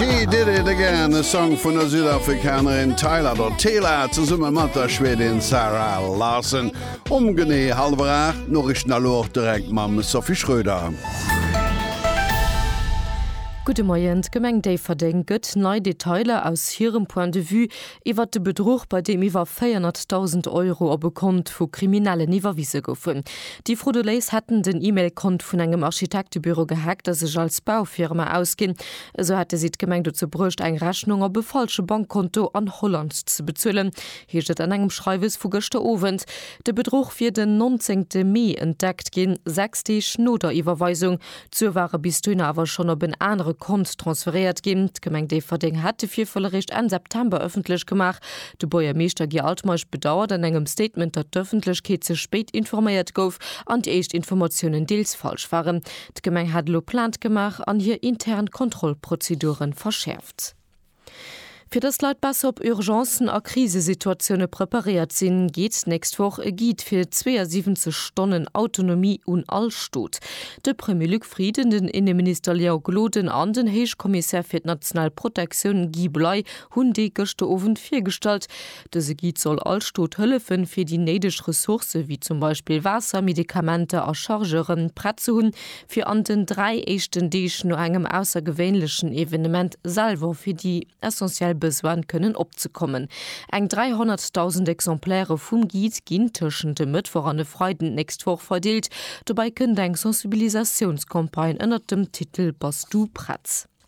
He Did It Again, e Song vun der Südafrikanerin Tyla der Tela zesumme mat der Schwedin Zara Larsson. Um genee hallwer 8 d'Noriichten a lo och direkt mam Sophie Schröder. Gudde Moien, D'Gemeng Déifferdeng gëtt nei Detailer aus hirem Point de vue iwwert de Bedruch, bei deem iwwer 400.000 Euro op e Kont vu Kriminellen iwwerwise goufen. Déi Frauduléis hätten den E-Mail-Kont vun engem Architektebüro gehackt a sech als Baufirma ausginn, Esou hätte si d'Gemeng dozou bruecht, eng Rechnung op e falsche Bankkonto an Holland ze bezuelen, heescht et an engem Schreiwes vu gëschter Owend. De Bedruch wier den 19 te Mee entdeckt ginn, sechs Deeg no der Iwwerweisung. D'Sue ware bis dohinner awer schonn op en anere Kont transferéiert ginn. D'Gemeng Déifferdeng hätt de Virfall eréischt Enn September ëffentlech gemaach. De Buergermeeschter Guy Altmeisch bedauert an engem Statement, datt d'Ëffentlechkeet ze spéit informéiert gouf an déi éischt Informatiounen deels falsch waren. D'Gemeng hat elo Plainte gemaach an hir intern Kontrollprozeduren verschäerft. Fir dass d'Leit besser op Urgencen a Krisesituatioune preparéiert sinn, geet d'nächst Woch e Guide fir 72 Stonnen Autonomie un all Stot. De Premier Luc Frieden, den Inneminister Léon Gloden an den Héichkommissär fir d'national Protektioun Guy Bley hunn dee gëschter Owend virgestallt. Dëse Guide soll all Stot hëllefen, fir déi néideg Ressourcë wéi zum Beispill Waasser, Medikamenter a Chargeuren prett ze hunn, fir an den dräi éischten Deeg no engem aussergewéinlechen Evenement selwer fir déi essentiell Besoine kënnen opzekommen. Eng 300.000 Exemplairë vum Guide ginn tëschent e Mëttwoch an e Freiden d'nächst Woch verdeelt. Dobäi kënnt eng Sensibilisatiounscampagne ënnert dem Titel Bass du prett?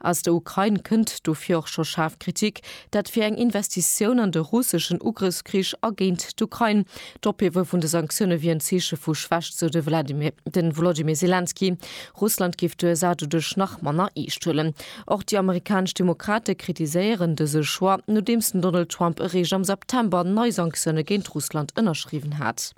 Aus der Ukrain kënnt dofir och scho schaarf Kritik, dat wier eng Investitioun an de russeschen Ugrëffskrich a géint d'Ukrain. D'Ophiewe vun de Sanktioune wier en Zeeche vu Schwächt, sou de Volodymyr Selenskyj. Russland géif d'USA doduerch nach manner eescht huelen. Och déi amerikanesch Demokrate kritiséieren dëse Choix, nodeems den Donald Trump eréischt am September nei Sanktioune géint Russland ënnerschriwwen hat.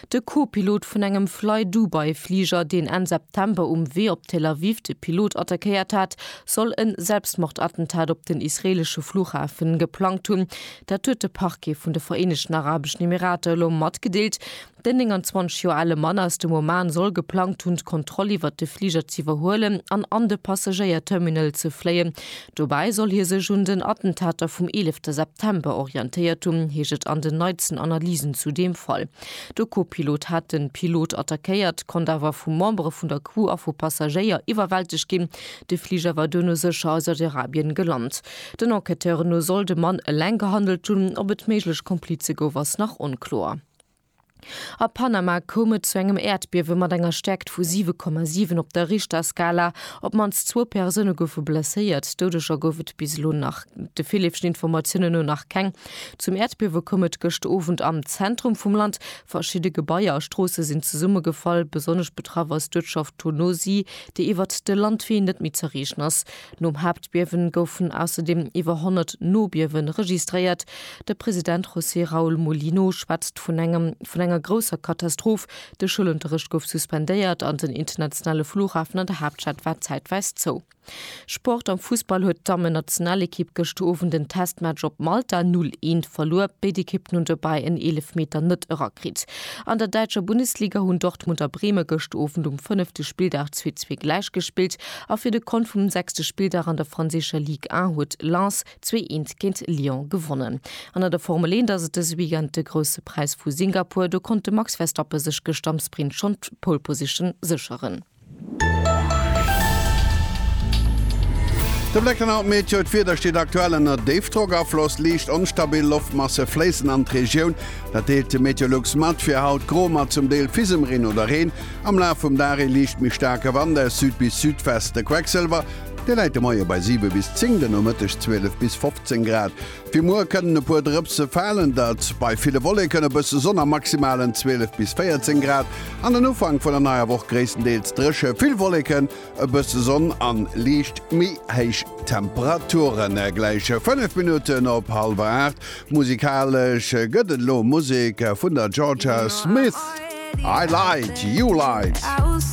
De Co-Pilot vun engem Flydubai-Fliger, deen Enn September um Wee op Tel Aviv de Pilot attackéiert hat, soll e Selbstmordattentat op den israeelesche Fluchhafe geplangt hunn. Dat huet de Parquet vun de Vereenegten Arabeschen Emirater elo matgedeelt. Den 29 Joer ale Mann aus dem Oman soll geplangt hunn, d'Kontroll iwwert de Fliger z'iwwerhuelen an an de Passagéierterminal ze fléien, Dobäi soll hie sech un den Attentater vum 11 September orientéiert hunn, heescht et an den neitsten Analysen zu deem Fall. De Co-Pilot hat de Pilot attackéiert, konnt awer vu Membere vun der Crew a vu Passagéier iwwerwältegt ginn. De Fliger war duerno sécher a Saudi-Arabien gelant. Den Enquêteuren no soll de Mann eleng gehandelt hunn, op et méiglech Komplize gouf ass nach onkloer. A Panama koum et zu engem Äerdbiewe mat enger Stäerkt vu 7,7 op der Richterskala. Op d'mannst zwou Persoune goufe blesséiert. Doudeger gouf et bis elo nach de villeeften Informatiounen no nach keng. Zum Äerdbiewe koum et gëscht Owend am Zentrum vum Land. Verschidde Gebaier a Stroosse sinn zesummegefall. Besonnesch betraff ass d'Uertschaft Tonosí, déi iwwert de Landwee net méi z'erreechen ass. Nom Haaptbiewen goufen ausserdeem iwwer 100 Nobiewe registréiert. De President José Raúl Mulino schwätzt vun engem vun enger grousser Katastroph, de Schoulunterrecht gouf suspendéiert an den internationale Flughafen an der Haaptstad war zäitweis zou. Sport, Am Fussball huet d'Dammen-Nationalekipp gëscht Owend en Testmatch op Malta 0, 1 verluer. Béid Ekippen hunn dobäi en Eelefmeter net erakritt. An der däitscher Bundesliga hunn Dortmund a Breme gëscht Owend um fënnefte Spilldag zwee zwee gläichgespillt. A fir de Kont vum sechste Spilldag an der franséischer Ligue 1 huet Lens zwee eent géint Lyon gewonnen. An an der Formel 1 ass et dëse Weekend de Grousse Präis vu Singapur. Do konnt de Max Verstappe sech gëscht am Sprint schonn d'Pole Position sécheren. De Bléck an haut Meteo, D'Wieder steet aktuell ënner Déifdrockafloss, liicht onstabil Loftmasse fléissen an d'Regioun. Dat deelt de Meteolux mat, fir haut gro mat zum Deel Fisemreen oder Reen. Am Laf vum Dag ee liicht méi staarke Wand aus Süd bis Südwest. De Quecksilwer, dee läit de Moie bei 7 bis 10, den Nomëtteg 12 bis 15 Grad. Fir muer kënnen e puer Drëpse falen, dat bei ville Wolleken, e bësse Sonn a maximalen 12 bis 14 Grad. An den Ufank vun der neier Woch gréisstendeels dréche, vill Wolleken E bësse Sonn an liicht méi héich Temperaturen gläiche 5 Minutten op hallwer 8. Musikalesch gëtt et elo Musek vun der Jorja Smith, I Light, You Light.